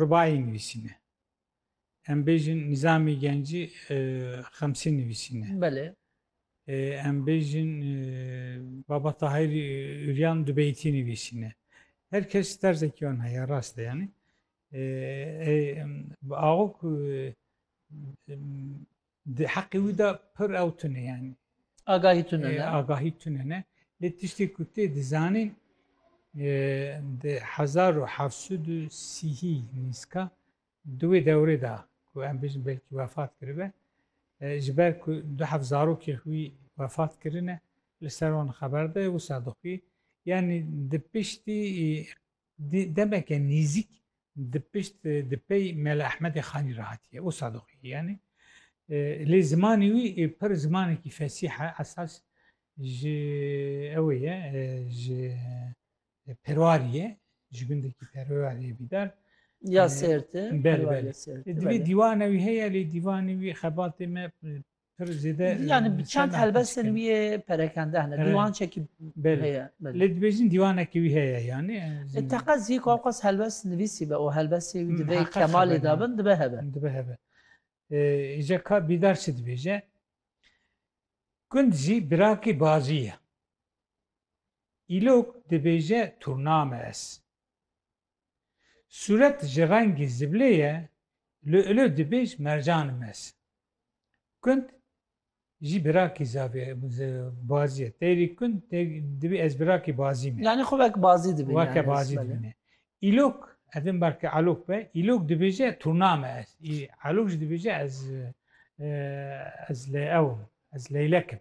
Rubayî nivîsîne. Em bêjin Nîzamî Gencî Xemsî nivîsîne. Belê. Em bêjin Baba Tahîrî Uryan du beytî nivîsîne. Her kes terzekî wan heye rast e yanî. Axo ku Di heqê wî de pir ew tune yani. Agahî tune ne? Agahî tune ne. Lê tiştê ku tê dizanîn di hezar û heft sed û sîhî nîska di wê dewrê de ku em bêjin belkî wefat kiribe ji ber ku du heft zarokê xwî wefat kirine li ser wan xeber de wisa dixwî yanî di piştî demeke nêzîk di pişt di pey Mela Ehmedê Xanî re hatiye û Sadoqiyê yanî lê zimanê wî pir zimanekî fesîh e esas ji ewê ye ji perwarî ye ji gundekî perwarî ye bîdar ya sêrti belê divê dîwane wî heye lê dîvanê wî xebatê me Yani bi çend helbestên wî yê perekende hene dîwan çekî heye. Lê dibêjin dîwanekî wî heye yanî. Teqez zî ku ewqas helbest nivîsî be û helbestê wî di vê kemalê de bin dibe hebe. Dibe hebe. Îca ka bîdar çi dibêje? Gund zî birakî bazî ye. Îlok dibêje turname ez. Sûret ji rengî ziblê ye, li ilo dibê ji mercan mes. Kund jî birakî zavê bazî ye. Têrî kund dibê ez birakî bazî me. Yanî xwe wek bazî dibîne. Weke bazî dibîne. Îlok, ez ê belke elok be, îlok dibêje turna me ez. Elok jî dibêje ez ez li ew im, ez leylek im.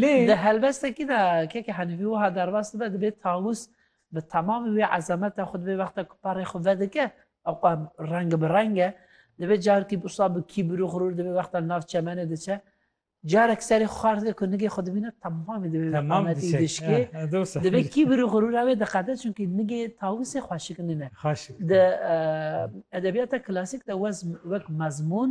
Lê di helbestekî de Keke Henîfî wiha derbas dibe, dibê Tawus bi temamî wê ezemeta xwe dibê wexta ku perê xwe vedike ew qe reng bi reng e, dibê carkî wisa bi kîbir û xirûr dibê wexta li nav çemenê diçe carek serê xwe xar dide ku nigê xwe dibîne temamî dibê wê qametî dişkê. Dibê kîbir û xirûra wê diqede çunkî nigê Tawusê xweşik nîne. Di edebiyata klasîk de wek mezmûn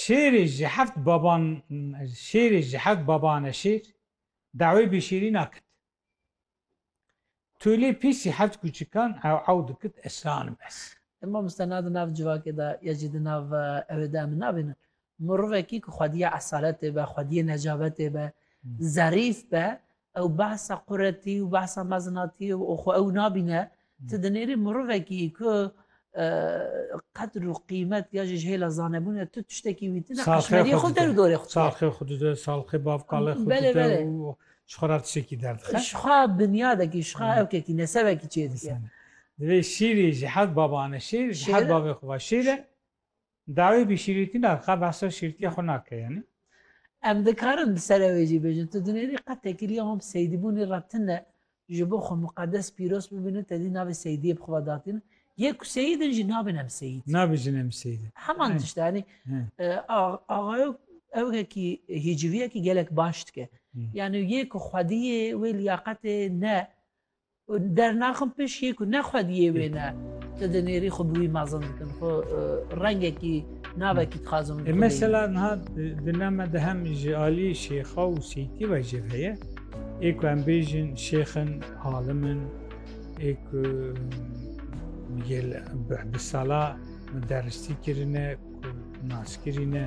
Şêrê ji heft baban Şêrê ji heft baban e şêr, dawê bêşêrî nakit. Tolê pîsî heft kûçikan ew ew dikit ez şanim ez. Em mamoste na di nav civakê de ya jî di nav ewê de em nabînin. Mirovekî ku xwediyê esaletê be, xwediyê necabetê be, zerîf be, Ew behsa quretî û behsa mezinatî û xwe ew nabîne. Ti dinêrî mirovekî ku qedr û qîmet ya jî ji hêla zanebûne tu tiştekî wî tune eşmeriyê xwe der û dorê xwe. Salxê xwe dide, salxê bavqalê xwe dide û ji xwe re tiştekî derdixe. Ji xwe binyadekî, ji xwe evkekî, nesebekî çêdike. Divê şîrî ji hev baban e. Şîr ji hev bavê xwe ve şîr e. Dawî bi şîrîtî na ka behsa şîrîtiya xwe nake yanî. Em dikarin bi serê wê jî bêjin tu dinêrî qet tekiriya wan bi seydîbûnî re tune ji bo xwe muqedes pîroz bibînin tedî navê seydiyê bi xwe ve datînin yê ku seyîd in jî nabin em seyîd. Nabijin em seyîd. Heman tişt e yanî Axayok ew yekî hîciviyekî gelek baş dike. Yanî yê ku xwediyê wê liyaqetê ne û dernaxin pişt yê ku ne xwe diyê wê ne tu dinêrî xwe bi wî mezin dikin xwe rengekî navekî dixwazin e, mesela niha dila me de hem ji aliyê şêxa û seytî ve jî heye ê ku em bêjin şêxin alim in ê ku gel bi sala deristî kirine ku nas kirîne